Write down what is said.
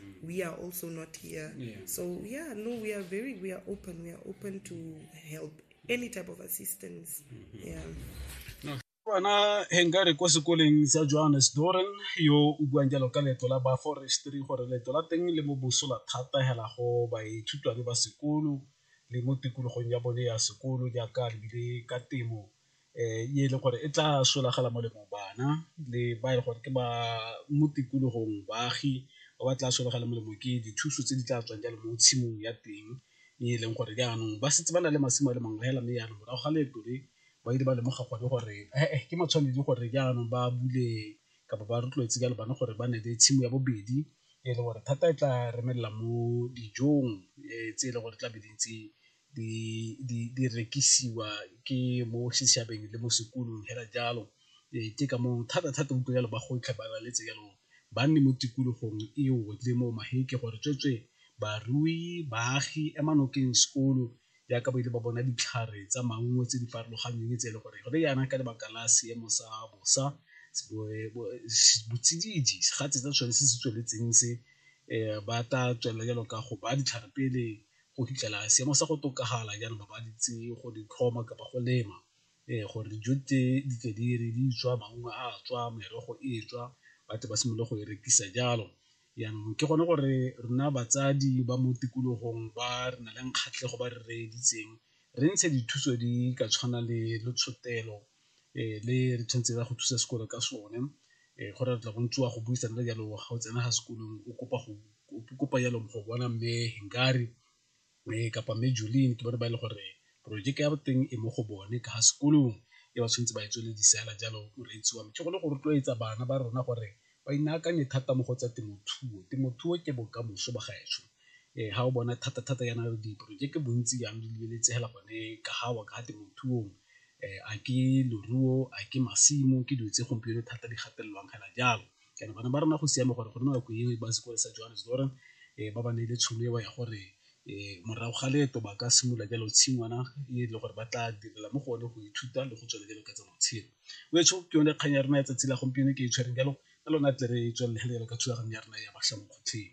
mm. we are also not here yeah. so yeah no we are very we are open we are open to help any type of assistance mm-hmm. yeah bana hengare kwa sekoleng sa johannes doren yo o buang jalo ka leeto la ba forestry gore leeto la teng le mo bosola thata hela go baithutwane ba sekolo le mo tikologong ya bone ya sekolo jaaka lebile ka temo e e leng gore e tla solagela molemo bana le ba e leng gore ke ba mo tikologong baagi ba ba tla solagela molemo ke dithuso tse di tla tswang jalo mo tshimong ya teng e e leng gore jaanong ba setse ba na le masimo a le mangwe fela mme jaanong morago ga leeto le ba ile ba lemoga gone gore ee ke matshwanedi gore jaanong ba bule kapa ba rotloetse jalo bana gore ba ne le tshimo ya bobedi e le gore thata e tla remelela mo dijong tse e leng gore tla be di ntse di rekisiwa ke mo setšhabeng le mo sekolong fela jalo. Ke ka moo thata-thata utlwa jalo bagodi tlhe ba laletse jalo ba nne mo tikologong eo le mo magetla gore tsweetswe barui, baagi ema nokeng sekolo jaaka ba ile ba bona ditlhare tsa maungo tse di farologaneng tse e le gore gone jaana ka lebaka la seemo sa bosa botsididi segatse sa sone se se tsweletseng se ba tla tswelela jalo ka go ba ditlhare pele go fitlhela seemo sa go tokafala jaanong ba ba di itse go di tlhoma kapa go lema gore dijo tse di tle di re di tswa maungo a tswa merogo e tswa ba tle ba simolole go e rekisa jalo. Jaanong ke gone gore rona batsadi ba mo tikologong ba re na leng kgatlhego ba re reeditseng re ntshe dithuso di ka tshwana le letshotelo le re tshwanetse re ya go thusa sekolo ka sone go re tla go ntshiwa go buisa le jalo ga o tsena ga sekolong o kopa go kopa jalo go bona mme Hengari kapa mme Jolene ke bone ba e leng gore porojeke ya boteng e mo go bone ka sekolong e ba tshwanetse ba e tswelele fela jalo moreetsi wa me ke gone go rotloetsa bana ba rona gore ba inaakanye thata mo go tsa temothuo. Temothuo ke bokamoso ba gaetsho ga o bona thata-thata yana diporojeke bontsi jang di lebeletsegela gone ka ga wa ka temothuong a ke leruo, a ke masimo ke dilo tse gompieno thata di gatelelwang fela jalo. Jaanong bana ba rona go siame gore go nne nako e ba sekole sa Johannesburg ba ba neele tšhono eo ya gore morago ga leeto ba ka simolola jalo tshingwana e le gore ba tla direla mo go one go ithuta le go tswelela jalo ka tsa matshelo wetsho ke yone kgang ya rona ya tsatsi la gompieno ke e tshwereng jalo ka lona tle re tswelele jalo ka thulaganyo ya rona ya batlha mo kgotlheng.